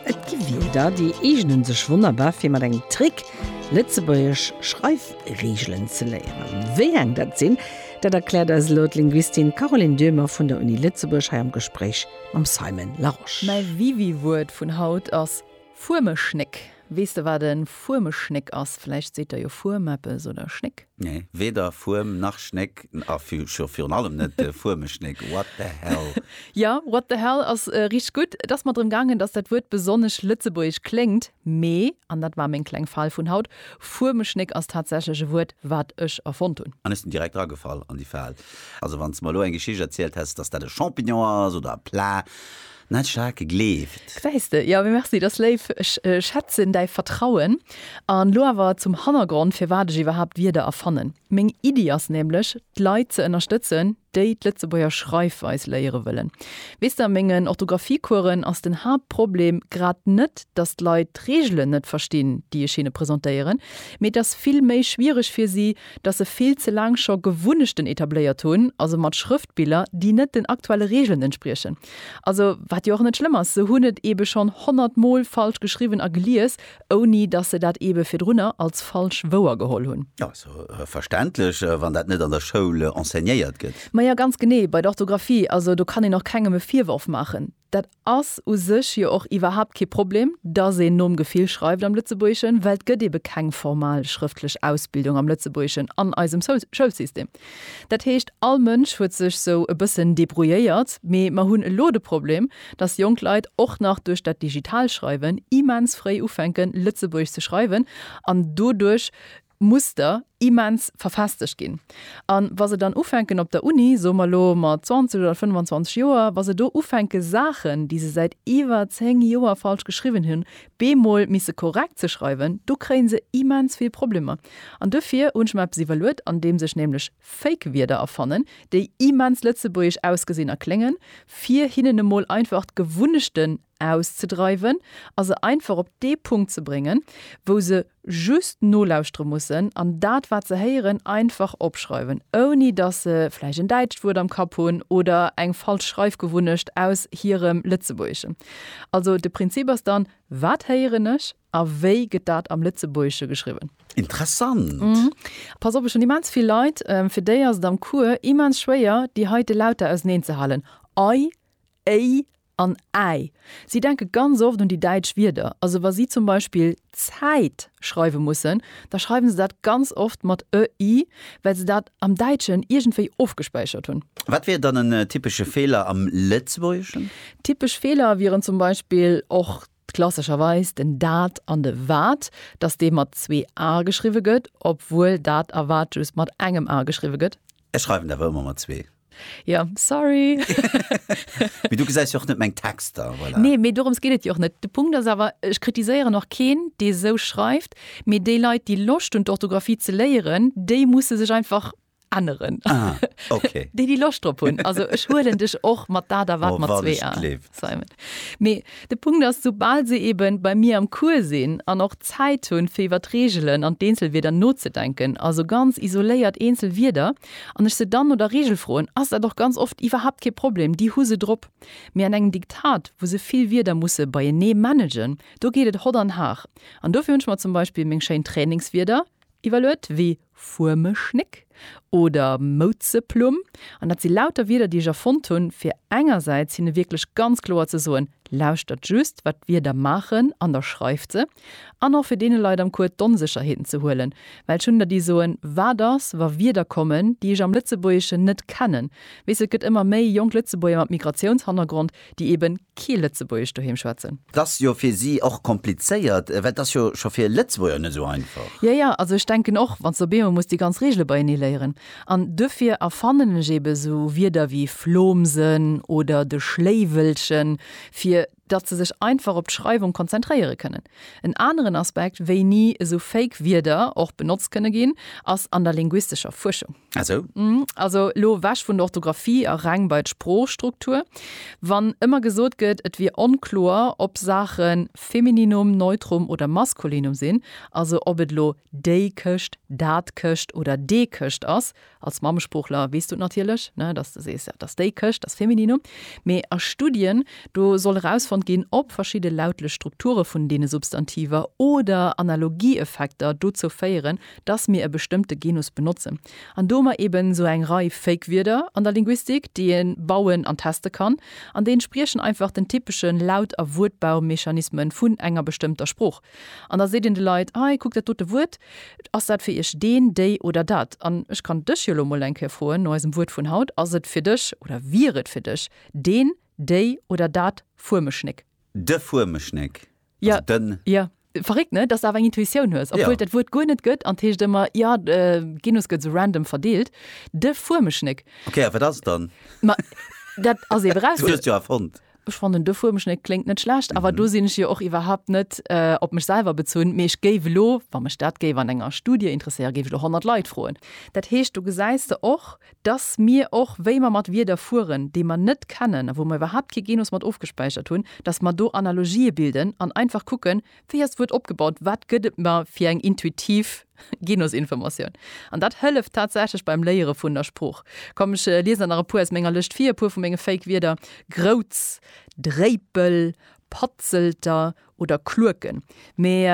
Et gi Wierder, déi eegnen sech wonnerbar fir mat engem Trick lëtzebuergesch Schreifreegelen ze léieren. Wéi eng dat sinn, dat erkläert eis elo d'Linguistin Caroline Döhmer vun der Uni Lëtzebuerg hei am Gespréich mam Simon Larosche. Mäi Wiwi-Wuert vun haut ass. Fuermeschnéck, Weess de wat e Fuermeschnéck ass? Vläicht seet der jo Fuerm eppes oder Schnéck? Nee, weder Fuerm nach Schnéck a virun allem net Fuermeschnéck. What the hell? Jo, what the hell ass richteg gutt. Et ass mer drëm gaangen, dass dat Wuert besonnesch lëtzebuergesch kléngt. Mee, an dat war meng kleng Fal vun haut, Fuermeschnéck ass tatsächlech e Wuert, wat ech erfonnt hunn. An ech sinn direkt eragefall an déi Fal. Also, wann s de mer elo eng Geschicht erzielt häss, dass dat e Champignon ass oder e Plat. Net staark gleeft. Gesäis de, jo, mee merci, dass léif. Ech schätzen däi Vertrauen. An elo awer zum Hannergrond, firwat ech iwwerhaapt Wierder erfannen. Meng Iddi ass nämlech, d'Leit ze ënnerstëtzen, déi d'Lëtzebuerger Schreifweis léiere wëllen. Weess de, a mengen Orthographie-Coursen ass den Haaptproblem grad net, dass d'Leit d'Reegelen net verstinn, déi ech hinne presentéieren, mee et ass vill méi schwiereg fir si, dass se vill ze laang scho Gewunnechten etabléiert hunn, also mat Schrëftbiller, déi net den aktuelle Reegelen entspriechen. Also, wat jo och net schlëmm ass, se hunn et eebe schonn honnert Mol falsch geschriwwen a gelies, ouni dass se dat eebe virdrunner als falsch wouer geholl hunn. Jo, ass jo verständlech, wann dat net an der Schoul enseignéiert gëtt. Maja, ganz genee, bei der Orthografie, also do kann een och kengem e Virworf maachen. Dat ass u sech jo och iwwerhaapt kee Problem, dass een nom Gefill schreift am Lëtzebuergeschen, well et gëtt ebe keng formal schrëftlech Ausbildung am Lëtzebuergeschen an eisem Schoulsystem. Dat heescht, all Mënsch huet sech sou e bëssen debrouilléiert, mee mer hunn elo de Problem, dass jonk Leit och nach duerch dat Digitalschreiwen immens fréi ufänken, Lëtzebuergesch ze schreiwen an doduerch Muster immens verfestegt ginn. A wa se dann ufänken op der Uni, soe mer elo mat 20 oder 25 Joer, wa se do ufänke Saachen, déi se säit iwwer 10 Joer falsch geschriwwen hunn, bemol misse korrekt ze schreiwen, do kréie se immens vill Problemer. An duerfir hunn ech mer eppes iwwerluet, andeems ech nämlech Fake-Wierder erfannen, déi immens lëtzebuergesch ausgesinn a kléngen, fir hinnen emol einfach d'Gewunnechten auszedreiwen a se einfach op dee Punkt ze bréngen, wou se just nolauschtere mussen an dat, wat se héieren, einfach opschreiwen, ouni dass se vläicht en däitscht Wuert am Kapp hunn oder eng falsch Schreifgewunnecht aus hirem Lëtzebuergesche. Also de Prinzip ass dann, Wat héieren ech a wéi gëtt dat am Lëtzebuergesche geschriwwen? Interessant! Pass op, ech hunn immens vill Leit, fir déi ass et am Cours immens schwéier, déi heite Lauter auseneenzehalen, ei, éi, An Äi. Si denke ganz oft un déi däitsch Wierder. Also wa si zum Beispill Zäit schreiwe mussen, da schreiwe se dat ganz oft mat ë, i, well se dat am Däitschen iergendwéi ofgespäichert hunn. Wat wier dann en typesche Feeler am Lëtzebuergeschen? Typesch Feeler wieren zum Beispill och Klassescherweis den dat an de wat, dass dee mat zwee a geschriwwe gëtt, obwuel dat a wat just mat engem a geschriwwe gëtt. Ech schreiwen awer ëmmer mat zwee. Jo, sorry. Mee du gesäis jo och net meng Texter, voilà. Nee, mee dorëms geet et jo och net. De Punkt ass awer, ech kritiséieren och keen, dee sou schreift, mee déi Leit, déi Loscht hunn, d'Orthografie ze léieren, déi musse sech einfach änneren. Ah, okay. déi déi Loscht drop hunn. Also ech huelen dech och mat dat a wat oh, mat zwee an. Simon. Mee de Punkt ass, soubal se eben bei mir am Cours sinn an och Zäit hunn, fir iwwer d'Reegelen an d'Eenzelwierder nozedenken, also ganz isoléiert eenzel Wierder, an ech se dann no der Reegel froen, ass dat och ganz oft iwwerhaapt kee Problem, déi hu se drop. Mee an engem Diktat, wou se vill Wierder musse beienee managen, do geet et hott an har. An dofir hunn ech mer zum Beispill meng schéin Trainingswierder iwwerluet, wéi Fuermeschnéck oder Mouzeplumm, an dat si lauter Wierder, déi ech erfonnt hunn, fir engersäits hinne wierklech ganz kloer ze soen, Lauschtert just, wat d'Wierder maachen, an da schreift se. An och fir deene Leit am Cours d'Onsécherheeten ze huelen, well ech hunn der, déi soen, Wat ass, wa Wierder kommen, déi ech am Lëtzebuergeschen net kennen? Weess, et gëtt ëmmer méi jonk Lëtzebuerger mat Migratiounshannergrond, déi eben kee Lëtzebuergesch doheem schwätzen. Et ass jo fir si och komplizéiert, well et ass jo scho fir Lëtzebuerger net esou einfach. Jo, jo, also ech denken och, wann s de op eemol muss déi ganz Reegele beienee léieren. An duerfir erfannen ech eben esou Wierder wéi Flomsen oder de Schléiwelchen, fir datt se sech einfach op d'Schreiwung konzentréiere kënnen. En aneren Aspekt, wéini esou fake Wierder och benotzt kënne ginn, ass an der linguistescher Fuerschung. Ah sou. Also elo ewech vun der Orthografie a reng bei d'Sproochstruktur. Wann ëmmer gesot gëtt, et wier onkloer, ob Saache Femininum, Neutrum oder Maskulinum sinn, also ob et elo déi Këscht, dat Këscht oder dee Këscht ass, Als Mammesproochler weess du et natierlech, ne, dass de sees, dass déi Këscht, dass Femininum. Mee a Studien, do soll erausfonnt ginn, ob verschidde lautlech Strukture vun deene Substantiver oder Analogieeffekter dozou féieren, dass mir e bestëmmte Genus benotzen. An do hu mer eben esou eng Rei Fake-Wierder an der Linguistik, déi ee bauen an teste kann, an déi entspriechen einfach den typesche Laut a Wuertbaumechanisme vun enger bestëmmter Sprooch. An da seet een de Leit, Hei, kuckt dat dote Wuert, ass dat fir iech deen, déi oder dat? An ech kann dech jo elo emol eng Kéier froen, no eisem Wuert vun haut, Ass et fir dech oder wier et fir dech deen, déi oder dat Fuemeschnéck? De Fuemeschnéck, also den. Jo, verréckt, ne? Dass s de awer eng Intuitioun hues, obwuel et dat Wuert guer net gëtt. An 't heescht ëmmer, jo, de Genus gëtt esou random verdeelt, de Fuemeschnéck. Ok, a wat ass et dann? Ma dat ass ee Viraussetzung. Du hues et jo erfonnt. Ech fannen de Fuermschnéck kléngt net schlecht, awer do sinn ech jo och iwwerhaupt net op mech selwer bezunn, mee ech géif elo, wa mech dat géif an enger Studie interesséieren, géif ech elo 100 Leit froen. Dat heescht, do gesäis de och, dass mir och, wéi mer mat Wierder fueren, déi mer net kennen a wou mer iwwerhaupt kee Genus mat ofgespäichert hunn, dass mer do Analogië bilden an einfach kucken, Wéi ass d'Wuert opgebaut? Wat gëtt et mer fir eng intuitiv Genusinformatioun? An dat hëlleft tatsächlech beim Léiere vun der Sprooch. Komm, ech liesen der nach e puer aus menger Lëscht vir, e puer vu menge Fake-Wierder, Grouz, Dréipel, Patzelter oder Klueken. Mee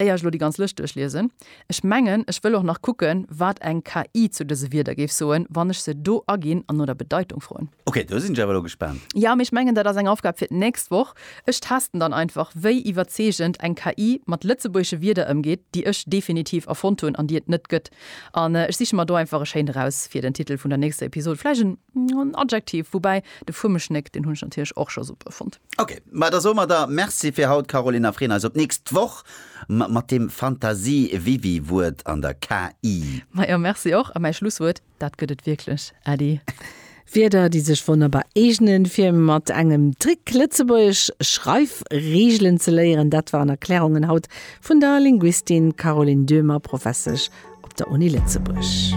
éier ech elo déi ganz Lëscht duerchliesen, Ech mengen, ech wëll och nach kucken, wat eng KI zu dëse Wierder géif soen, wann ech se do aginn an no der Bedeitung froen. Ok, do sinn ech awer elo gespaant. Jo, mee ech mengen, dat ass eng Aufgab fir d'nächst Woch. Ech testen dann einfach, wéi iwwerzeegend eng KI mat lëtzebuergesche Wierder ëmgeet, déi ech definitiv erfonnt hunn an déi et net gëtt. An ech siche mer do einfach e schéint eraus fir den Titel vun der nächster Episod. Vläicht en Adjektiv. Woubäi, de Fuemeschnéck, deen hunn ech natierlech och scho super fonnt. Ok, ma da soe mer der Merci fir haut, Caroline, a freeën eis op d'nächst Woch mat deem Fantasie-Wiwi-Wuert an der KI. Majo, Merci och. A mäi Schlusswuert, dat gëtt et wierklech, Äddi. Wierder, déi sech wonnerbar eegnen, fir mat engem Trick lëtzebuergesch Schreifregelen ze léieren, dat waren Erklärungen haut vun der Linguistin Caroline Döhmer, Professesch op der Uni Lëtzebuerg.